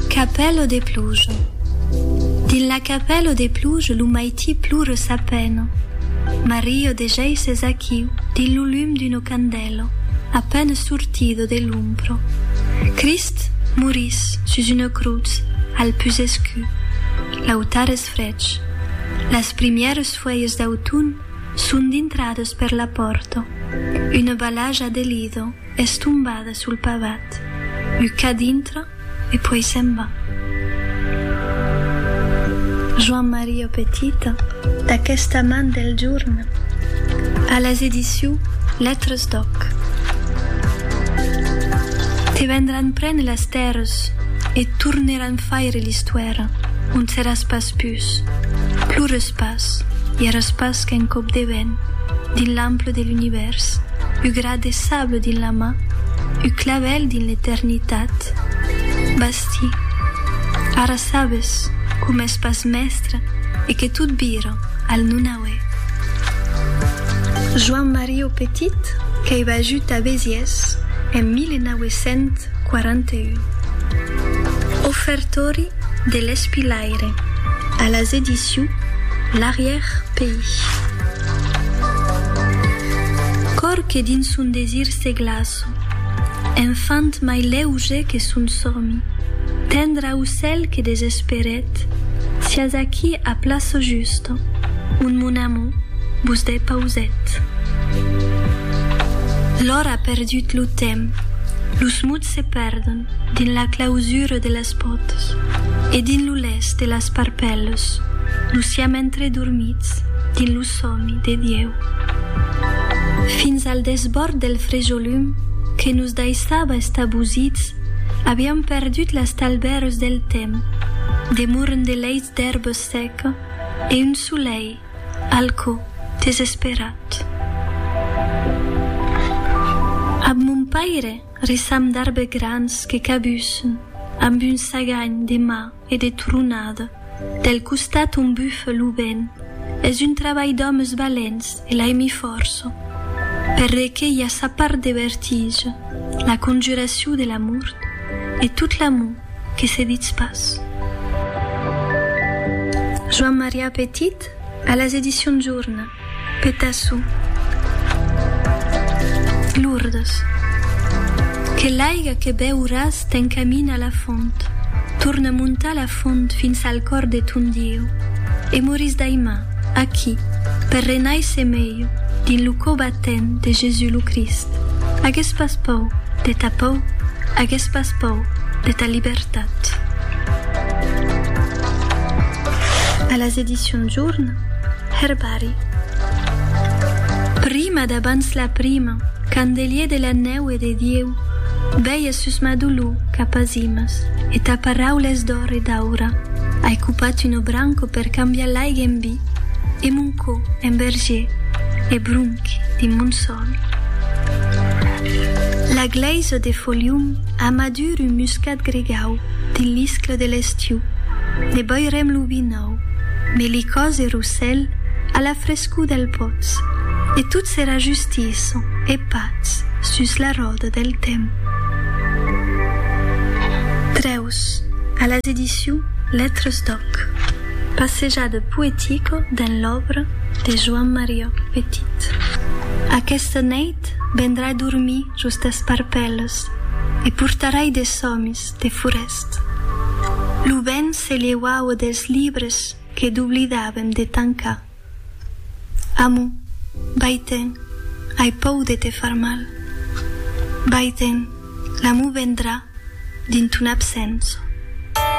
Capèlo de pluja Dins la capèlo de pluja lo maití plure sa pena Mario de jei s'es achiu dins lo lum d'uno candèlo a pène sortido de l'umbro Crist morís sus una crutz al pus escu L'autar es frech Las primières fuèlhas d'autun son dintrades per la pòrta Una balaja de lido Es tombada sul pavat, u ca dintra e puèi se'n va. Joan Maria Petita, d'aquesta man del jorn, a las ediciu Letras d'Òc. Te vendràn prene las tèrres e torneràn faire l'istuèra, ont seràs pas pus, plores pas, i eras pas qu'un còp de vent dins l'ample de l'univèrs, u De sable dins la man, ua clavèl dins l'eternitat. Basti. Ara sabes que m'ès pas mèstre e que tot vira al nonauè. Joan Mario Petit qu'ei vajut a Besiès en 1941. Ofertori de l'espilaire a las edicions L'Arrière-pays. Còr que dins son desir se glaço. Enfant mai lèuge que son sòmi. Tendre aucèl que desesperèt. Siás aquí a plaço justo. Un mon amor vos dè pausèt. L'ora perdut lo temps. Los mots se perdon dins la clausura de la. las botas e dins lo lèst de las parpèlas lo siam entredormits dins lo sòmi de Dieu. Fins al desbòrd del frejolum que nos daissava estabosits aviam perdut las talbèras del temps, de morn de leits d'èrba seca e un solei al cò desesperat. Ab mon paire, Ressam d'arbes grans que cabussen amb un saganh de ma e de tronada del costat ont bufa lo vent. Es un trabalh d'òmes valents e l'aimi fòrça perlé que i a sa part de vertige, la conjuracion de la mort e tot l'amor que se ditz pas. Joan Marià Petit a las Edicions Jorna. Petassu. Lourdes. Que l'aiga que beuràs t'encamina a la font, torna montar la font fins al còr de ton Dieu, e morís daimà, aquí, per renaisser melho dins lo cò batent de Jesús lo Crist. Agues pas pòur de ta pòur, agues pas pòur de ta libertat. A las Edicions Jorn. Herbari. Prima d'abans la prima, candelier de la nèu e de Dieu, veia sus ma dolor cap a zimas e ta paraules d'òr e d'aura, ai copat un obranco per cambiar l'aiga en vi e mon cò en vergier e bronc dins mon sòl. La glèisa de Folium a madur un muscat gregau dins l'iscle de l'estiu, ne boirem lo vi nòu. Au, melicòs e rossèl a la frescor del pòtz, e tot serà justiçon e patz sus la ròda del temps. Trèus a las edicions Lettres d'Òc. Passejada poetica dens l'òbra de Joan Mariòc Petit. Aquesta nèit vendrai dormir jos d'esparpèlas e portarai de sòmis de forest. Lo vent se lheuava dels libres que doblidàvem de tancar. Amo, vai-te'n, ai pòu de te far mal. Vai-te'n, l'amor vendrà dins ton absença.